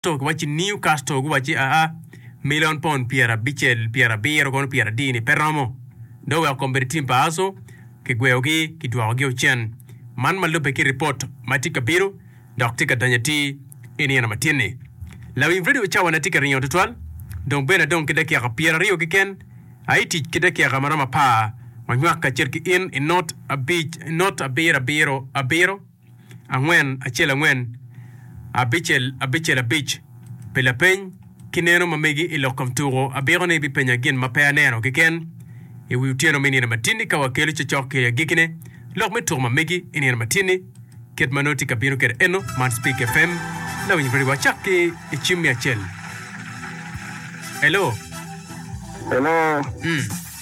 to giwacci niu kasto guwacci aa milion pond pyerabicel pyerabiro kono pyeradini pe romo do weko kombeddi tim pa Aso kigweyogi kidwokogi o cen man ma lubbe ki ripot ma tye ka bino dok tye ka danyo atir i nino matin ni lawiny redio cawa ne tye ka ringo tutwal dong bene adong ki dakika pyeraryo keken aye tic ki dakika maromo apar wanywak kacel ki in i not abic not abiro abiro abiro angwen acel angwen, abicel abicel abic, pi lapeny ki neno ma megi i lok kom tuko, abiko ni ibipenya gin ma pe aneno keken i wi otyeno me nino matini ka wakelo cocok ki i agikine lok me tuko ma megi i nino matini kit ma nongo tye ka bino kede eno man Spik FM lawiny radio wa cak ki i cim me acel. Hello. Hello. Mm.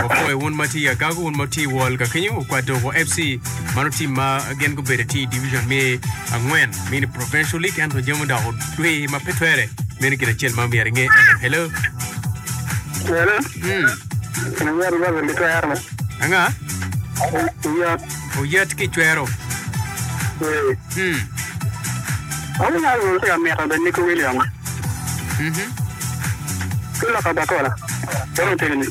Wapoyo wun ma tye i agago, wun ma tye i wol ka kenyo, wukwat doko FC. Mano tim ma gin gubede tye i Division me angwen, mini Provincial League, ento jami odoko dwe ma pe twere. Meno gin acel ma myero inge eno. Hello. Hello. Hmm. Iyot iyot gitwero. Anga? Iyot. Oyet ki cwero. Ee. Mm. Magi nyaka lwongo ki Amika bed Nico Williams. Mhm. Ki Lok Abakola. Dong otegini.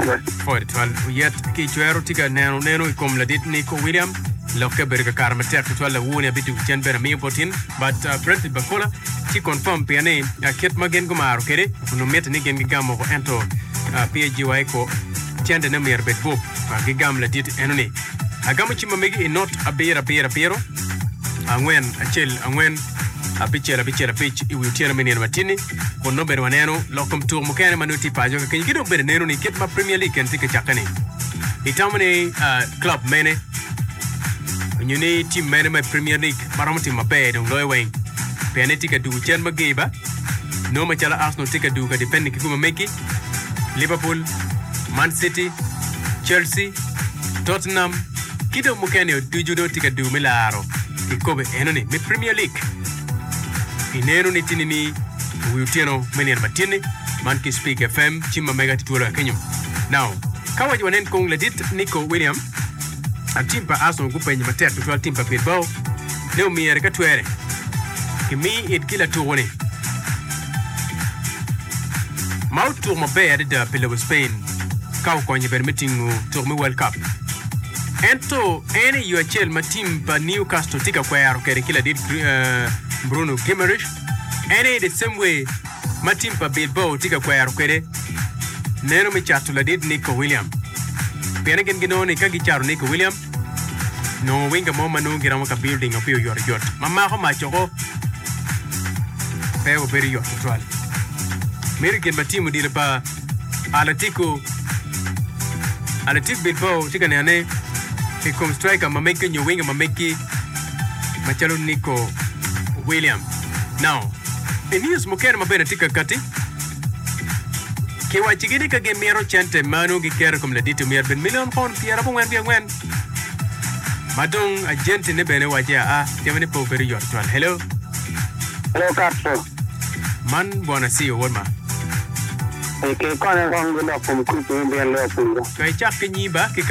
Ee. Pwod twal oyet ki cwero tye ka neno neno i kom ladit Nico Williams. Lokke bedo ka kato matek tutwal lawu ni abitugo cen bene amiyo bot in. But uh, President Bakola tye confirm pien ni uh, kit ma gin gumaro kwede onongo mitte ni gin gigamo oko ento uh, PAGY ko cendene myero bed bup ma gigam ladit eno ni, Agamo cim ma megi i not abiro abiro abiro, angwen acel angwen, abicel abicel abic i wi otyeno me nino matinni, kun nongo bene waneno lok kom tuko mukene ma nongo tye paco kakenyo ki dong bene neno ni kit ma Premier League eni tye ka cakke ni, itamo ni club mene onyo ni team mene ma i Premier League ma romo timo maber dong loyo weng, pien ni tye ka dugo cen ma ger ba, nongo macalo Arsenal tye ka dugo ka defending ki gum ma megi. Liverpool, Man City, Chelsea, Tottenham ki dong mukene o ducu dong tye ka duu me laro kikopo enoni me Premier League. Ineno ni tini ni wi otyeno me nino matyeni man ki Speak FM cim ma mega tye twolo ka kenyo. Now, ka waco wanen kong ladit Nico William, a tim pa Arsenal gupenye matek tutwal tim pa Bilbao ne omyere ka twere kimi it ki latuku ni ma otuko maber adada pi lobo Spain ka okonyo bene me tingo tuko me World Cup. Ento en i yo acel ma tim pa Newcastle tye ka kwero kwede ki ladit eh, Bruno Guimaraes, en aye the same way ma tim pa Bilbao tye ka kwero kwede neno me cato ladit Nico William. Pien gin ginongo ni ka gicato Nico William, Nongo wing ka mo ma nongo giromo ka bilding opiyo oyotoyot ma mako mac oko pe obedo yot tutwal. Meri gin ma tim odilo pa Atletico Athletic Bilbao tye ka nene i kom striker ma meggi nyo winga ma meggi macalo Nico William. Now, i news mukene ma bene tye ka kati, Kiwaccigi ni ka gimito cente meno giketo i kom laditi omyero bed milion pound pyera abongwen wiye angwen. Ma dong ajenti-ne bene owacce aa, jami ni pe obedo yot twal. Hello. Hello Castro. Man Bwana Sio wod ma. Ee, kikonya kong gidok kom kuc me bino lwak wiwa. Pe icak ki nyi ba ki ka